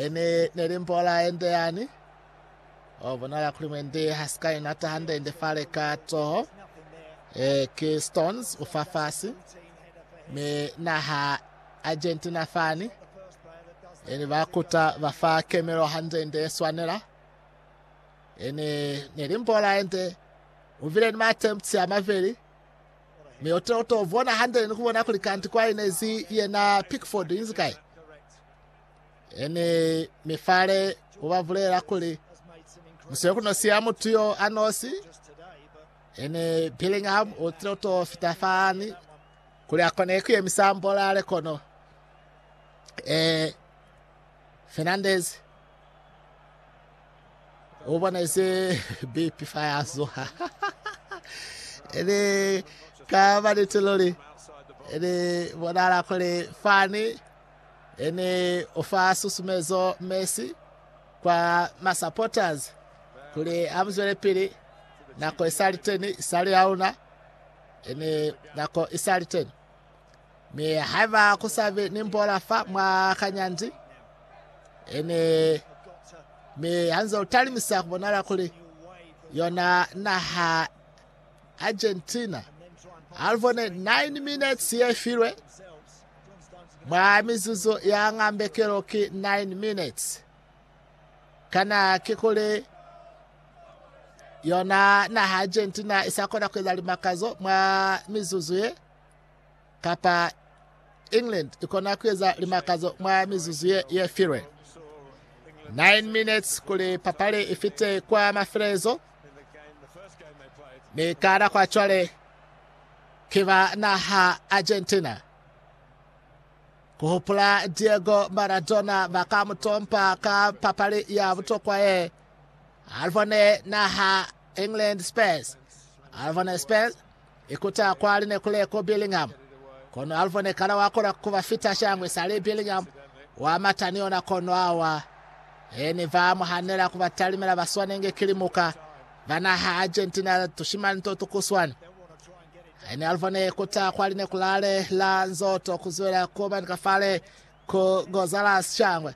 Ini neli mpola ende yani. O bona la kuli mwendi ha sika ina ta hande ende fale ka toho. Eh, ki Stones ufafasi. Me naha Argentina fani. Ini ba kuta ba fa kemelo hande ende swanela. Ini neli mpola ende. Uvile ni ma attempts ya maveli. Mi uto uto bona hande ni kubona kuli kanti kwa inezi yena Pickford inzi kai. Eni mifale ubavulela kuli muswe kunosiya mutu yo anosi ene Bellingham utile uto fita fani kuli akone kuyemisa mbola ale kono eh Fernandez O bona ise bipi fa ya zuha. Ene ka ba niti luli. Ene bonala kuli fani ene o fa susumezo Messi kwa ma supporters kuli a muzwele pili. Nako isali teni, isali ya una. Ene nako isali teni. Mi haiba ku sa be ni mbola fa mwa kanyandi, ene mi hanze u talimisa ku bonala kuli yona naha Argentina half one 9 minutes ye filwe mwa mizuzu ya ngambekelo ki 9 minutes kana ke kuli yona naha Argentina isa kona ku eza limakazo mwa mizuzu ye kapa England ikona kueza limakazo mwa mizuzu ye, ye filwe. 9 minutes kuli papali ifite kwa mafelezo. Ni kana kwa chwale kiba naha Argentina. Kuhupula Diego Maradona baka mutompa ka papali ya butokwa ye. Alvone naha England Spurs. Alvone Spurs Ikuta kwali ne kule ku Birmingham, kono Alvo ne kana wa kona ku ba fita shangwe sali Birmingham, wa mata ni yona kono a wa. He ne ba mu hanela ku ba talimela ba swanenge ki limuka ba naha Argentina tushimani to tu kuswani. He ni Alvo ne ikuta kwali ne ku lale la nzoto ku zwela ku ba ni ka fale ku Gonzalez shangwe.